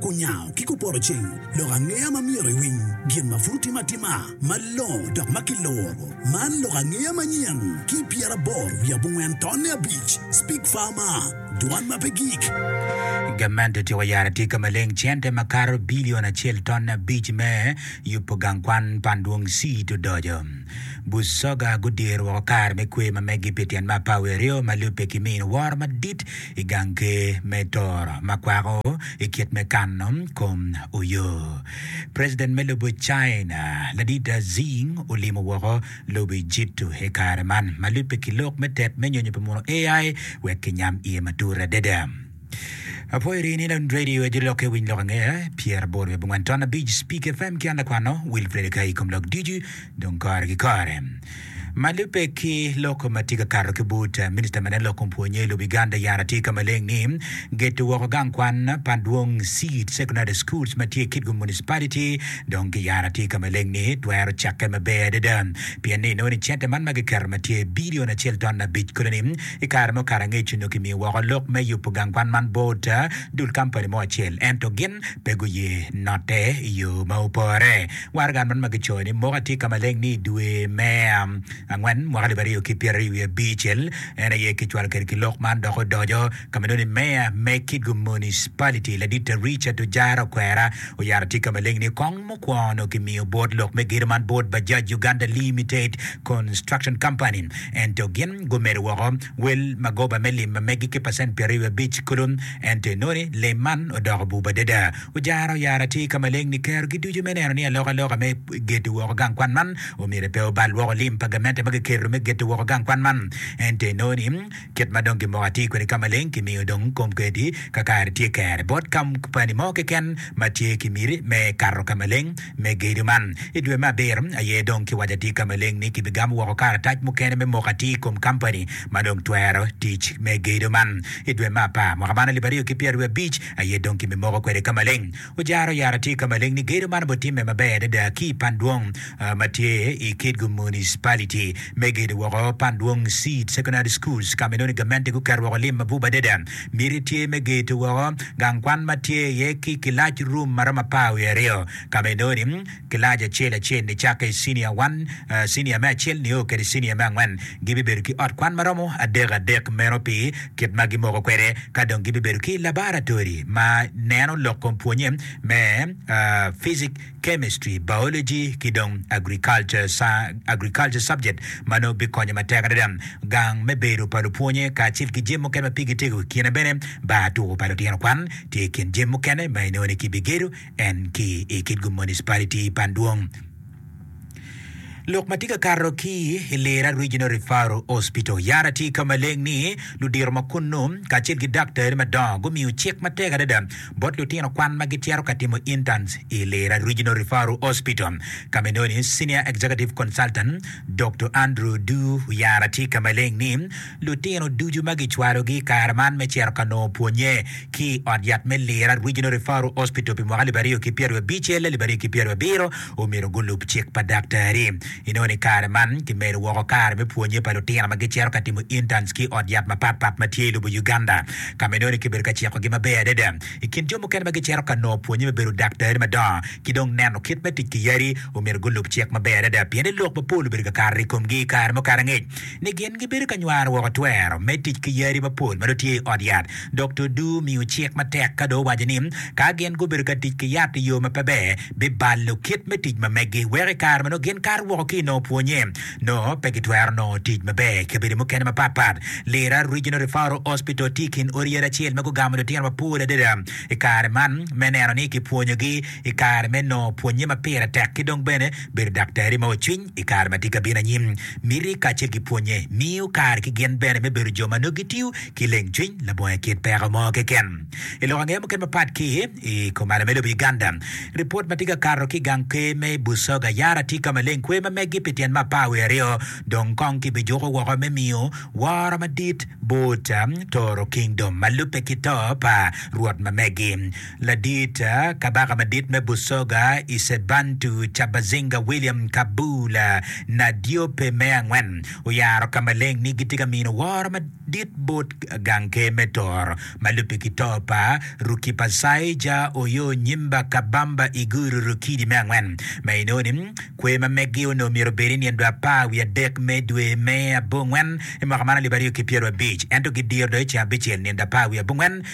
Kunyango ki kupoto ceng lok angeya ma myero iwiny gin ma pud otim atima malongo dok ma kiluro. Man lok angeya manyen ki i pyeraboro wiye abongwen tonne abic. Speak Farmer, Dwan ma pe gik. Gamente otyeko yaro atika maleng cente makato bilion acel tonne abic me yubo gang kwan pa Andwong Seed odoco. Busoga gudiro woko kare me kwer ma meggi pi tyen mappa aweryo ma lubbe ki mino woro madit i gang ker me toro ma kwako i kit me kano kom oyo. President me lobo China ladida Xi olimo woko lobo Ejipto i kare man ma lubbe ki lok me tet me nyonyo pi muno AI wek kinyam iye matut adada. Apo iri ni lon radio edi lok e winy lok ange pyer aboro wiye bongwen ton abic speak fm ki an lakwano Wilfred Kayi kom lok ducu dong kore ki kore. Ma lubbe ki lok ma tye ka kato ki but, Minista ma nen lok kom pwonye i lobo Uganda yara tye ka maleng ni geto woko gang kwan pa Adwong Seed Secondary Schools ma tye i Kitgum Municipality dong ki yara tye ka maleng ni twero cakke maber adada pien ni inongo ni cente man ma giketo ma tye bilion acel ton abic kodi ni i kare mo kare angec onongo kimiyo woko lok me yubo gang kwan man bot dul kampani mo acel ento gin pe guye note i yo ma opore. Waraga man ma kicoyo ni Moka tye ka maleng ni i dwe me angwen mwaka alip aryo ki pyeraryo wiye abicel en aye kicwalo kede ki lok man dok odoco ka ma nongo ni Meya me Kitgum Municipality Laditta Richard Ojara Okwera oyaro tye ka maleng ni kong mukwongo nongo kimiyo bot lok me gedo man bot Bajaj Uganda Limited Construction Company ento gin gumedo woko wel magoba me lim ma megi ki pacent pyeraryo wiye abic kulu ento inongo ni lim man odoko bub adada. Ojara oyara tye ka maleng ni kerogi ducu me neno ni alokaloka me gedo woko gang kwan man omyero pe obal woko lim pa gamente ma kiketo me gedo woko gang kwan man. Ento inongo ni kit ma dong gimoko atir kwede ka maleng kimiyo dong kom kedi ka kare tye kere bot kampani mo keken ma tye ki miti me kato ka maleng me gedo man. I dwe me abiro aye dong kiwaco atir ka maleng ni kibigamo woko karatac mukene me moko atir i kom kampani ma dong twero tic me gedo man. I dwe me apar mwaka man alip aryo ki pyeraryo abic, aye dong kimimoko kwede ka maleng. Ojara oyara tye ka maleng ni gedo man obitimme maber adada ki i pan dwong ma tye i Kitgum Municipality me gedo woko pan dwong Seed Secondary Schools ka ma inongo ni gamente guketo woko lim mabup adada. Miti tye me geto woko gang kwan ma tye iye ki kilac rum ma romo apar wiye aryo ka ma inongo ni Kilac acel acel nicakke i cinia one, cinia me acel nio kede cinia me angwen gibibedo ki ot kwan ma romo adek adek meno pi kit ma gimoko kwede. Ka dong gibibedo ki labaratori ma neno lok kom pwonye me Physic, Chemistry, Biology ki dong Agriculture, Agriculture subject ma nongo bikonyo matek adada. Gang me bedo pa lupwonye kacel ki jami mukene ma pigi tego i kine bene, bar tuko pa lutino kwan tye i kin jami mukene ma inongo ni kibigedo. en ki i Kitgum Municipality i Bandwong. Lok ma tye ka kato ki i Lira Regional Referral Hospital, Yara tye ka maleng ni ludito ma kunnu kacel ki daktari madongo gumiyo cik matek adada bot lutino kwan ma gicito ka timo interns i Lira Regional Referral Hospital. Ka ma enoni, Senior Executive Consultant Doktor Andrew Du Yara tye ka maleng ni Lutino ducu ma gicwalogi i kare man me cito ka nongo pwonnye ki i ot yat me Lira Regional Referral Hospital pi mwaka alip aryo ki pyeraryo abicel alip aryo ki pyeraryo abiro omyero gulub cik pa daktari. Inongo ni kare man kimedo woko kare me pwonnye pa lutino ma gicito ka timo interns ki i ot yat mapat pat ma tye i lobo Uganda ka ma inongo ni kibedo ka cikogi maber adada. I kin jo mukene ma gicito ka nongo pwonnye me bedo daktari madongo ki dong neno kit me tic ki yadi omyero gulub cik maber adada pien ni lok mapol obedo ka kato i komgi i kare mukene angec. ni gin gibedo ka nywaro woko twero me tic ki yadi mapol ma dong tye i ot yat. Dokta Du omiyo cik matek ka dong owaco ni ka gin gubedo ka tic ki yat i yo ma pe ber, bibalo kit me tic ma megi weko i kare ma nongo gin kato woko ki i nongo pwonye, nongo pe gitwero nongo tic maber i kabedo mukene mapatpat. Lira Regional Referral Hospital tye i kin odi yadi acel ma gugamo lutino mapol adada i kare man me neno ni kipwonyogi i kare me nongo pwonnye ma pire tek ki dong bene bedo daktari ma ocwiny i kare ma tye ka bino anyim. Miti kacel ki pwonnye miyo kare ki gin bene me bedo jo ma nongo gitiyo ki lengcwiny labongo i kit peko mo keken. I lok angeya mukene mapat ki i kom ada me lobo Uganda, ripot ma tye ka kato ki i gang kwer me Busoga Yara tye ka maleng kwer ma meggi pi tyen me apar wiye aryo dong kong kibijuko woko me miyo woro madit bot Toro Kingdom ma lubbe ki to pa Rwot ma meggi. Ladit Kabaka Madit me Busoga, Isebantu Cabazinga William Kabula Nadiope me Angwen oyaro ka maleng ni gitye ka mino woro madit bot gang ker me Tor ma lubbe ki to pa Rukipasaija Oyo Nyimba Kabamba Iguru Rukidi me Angwen ma inongo ni kwer ma meggi onongo myero obed i nyen dwe apar wiye adek me dwe me abongwen i mwaka man alip aryo ki pyerwabic ento gidiro do i ceng abicel nyen dwe apar wiye abongwen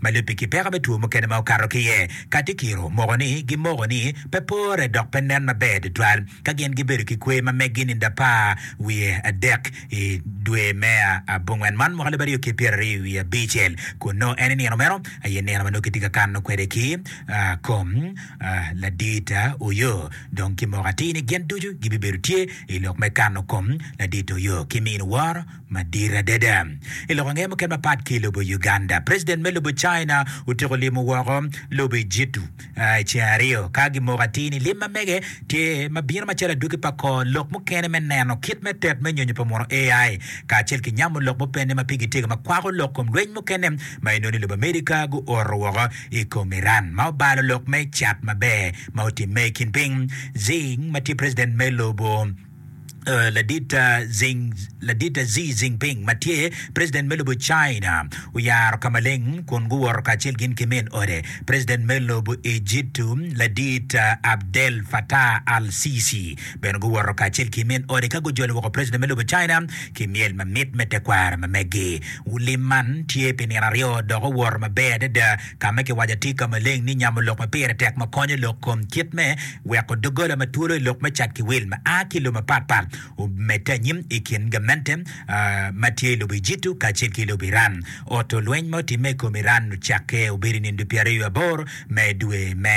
ma lubbe ki peko me two mukene ma okato ki iye. Katikiro moko ni gimoko ni pe pore dok pe nen maber tutwal ka gin gibedo ki kwe ma meggi nindo apar wiye adek i dwe me abongwen man mwaka alip aryo ki pyeraryo wiye abicel kun nongo en i nino meno aye nino ma nongo kitye ka kano kwede ki kom ladit Oyo dong kimoko atir ni gin ducu gibibedo tye i lok me kano kom ladit Oyo ki mino woro Madit adada, i lok ange mukene mapat ki i lobo Uganda, president me lobo China otyeko limo woko lobo Ejitu i ceng aryo ka gimoko atir ni lim ma mege tye ma bino macalo adwogi pa kor lok mukene me neno kit me tet me nyonyo pa muno AI kacel ki nyamo lok mupenne ma pigi tyeka ma kwako lok kom lweny mukene ma inongo ni lobo America guoro woko i kom Iran ma obalo lok me cat maber ma otimme i kin piny Xing ma tye president me lobo Ladit Xi Jinping ma tye president me lobo China oyaro ka maleng kun guwoto kacel gin ki min ode, President me lobo Ejitu Ladit Abdel Fattah al-Sisi bene guwoto kacel ki min ode ka gujolo woko president me lobo China ki myel mamit me tekwaro ma megi. Lim man tye pi nino aryo dok owoto maber adada. ka ma kiwaco atir ka maleng ni nyamo lok ma pire tek ma konyo lok kom kit me weko doggola ma twolo i lok me cat ki wil ma a ki i lobo mapatpat omedde anyim i kin gamente ma tye i lobo Ejitu kacel ki lobo Iran. Oto lweny ma otimme i kom Iran ocakke obedo i nindo pyeraryo aboro me dwe me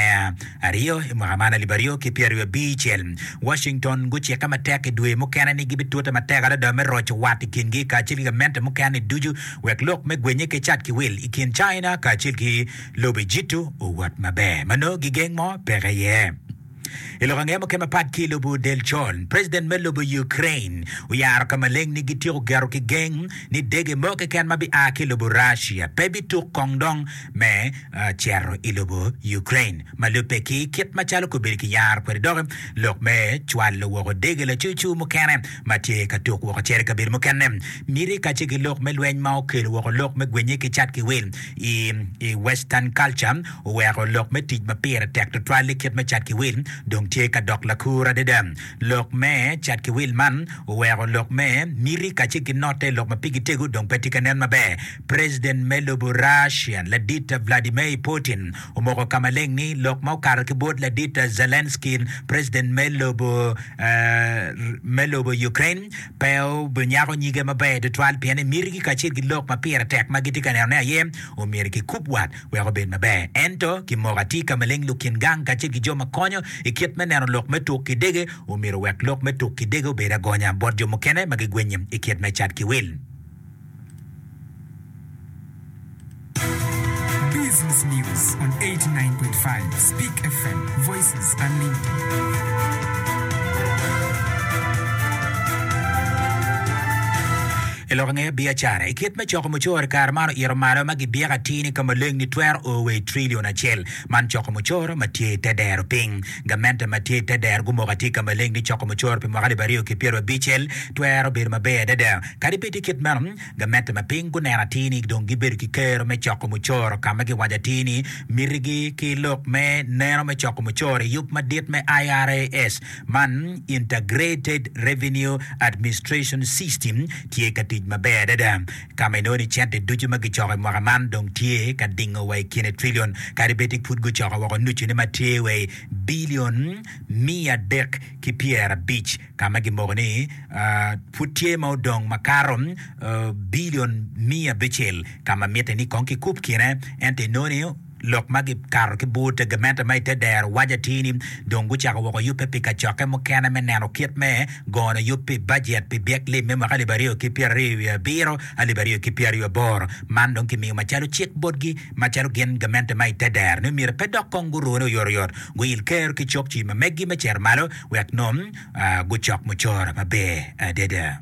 aryo i mwaka man alip aryo ki pyeraryo abicel. Washington gucikke matek i dwe mukene ni gibitute matek adada me roco wat i kingi kacel ki gamente mukene-ni ducu wek lok me gwenye ki cat ki wil i kin China kacel ki lobe Jitu owot maber ma nongo gigeng mo peke iye. I lok ange muken mapat ki i lobo del con, president me lobo Ukraine oyaro ka maleng ni gityeko gero ki geng ni dege mo keken ma bia ki i lobo Russia pe bituk kong dong me cito i lobo Ukraine ma lubbe ki kit macalo kobedo kiyaro kwede dok lok me cwalo woko dege lacucu mukene ma tye ka tuk woko cere i kabedo mukene, miti kacel ki lok me lweny ma okelo woko lok me gwenye ki cat ki wil i i Western culture oweko lok me tic ma pire tek tutwal i kit me cat ki wil dong tye ka dok lakur adada. Lok me cat ki wil man oweko lok me miti kacel ki note lok ma pigi tego dong pe tye ka nen maber. President me lobo Russia ladit Vladimir Putin Omoko ka maleng ni lok ma okato ki bot ladit Zelenskyy, president me lobo Ukraine, pe obinyako nyige maber tutwal pien emitigi kacel ki lok ma pire tek ma gitye ka nenone aye omyero kikub wat wek obed maber. Ento, kimoko atir ka maleng lukin gang kacel ki jo ma konyo i kit me neno lok me tuk ki dege omyero owek lok me tuk ki dege obed agonya bot jo mukene ma gigwennye i kit me cat ki wil. Business News on 89.5 Speak FM, Voices Unlimited. I lok ange biacara i kit me coko mucoro i kare man oito malo ma gibyeko atir ni ka maleng ni twero o wa i trilion acel. Man coko mucoro ma tye i te dero piny. Gamente ma tye i te dero gumoko atir ka maleng ni coko mucoro pi mwaka alip aryo ki pyero abicel twero bedo maber adada. Kadi bed tye kit meno, gamette ma piny guneno atir ni dong gibedo ki kero me coko mucoro ka ma giwaco atir ni mitigi ki lok me neno me coko mucoro i yub madit me IRAS man, Integrated Revenue Administration System, tye ka tic maber adada ka ma inongo ni cente ducu ma gicoko i mwaka man dong tye ka dingo wa i kine trilion kadi bed ni pud gucoko woko nucune ma tye wa i bilion miya adek ki pyerabic. ka ma gimoko ni pud tye ma odong makato bilion miya abicel ka ma mitte ni kong kikub kine, ento inongo ni lok ma gikato ki bur te gamente ma i te dero waco atir ni dong gucako woko yubbe pi kacokke mukene me neno kit me gono yub pi bajet pi byek lim me mwaka alip aryo ki pyeraryo wiye abiro, alip aryo ki pyeraryo aboro. Man dong kimiyo macalo cik botgi macalo gin gamente ma i te dero ni myero pe dok kong gurune oyotoyot guil ker ki cokci ma megi me cito malo. wek nongo gucok mucoro maber adada.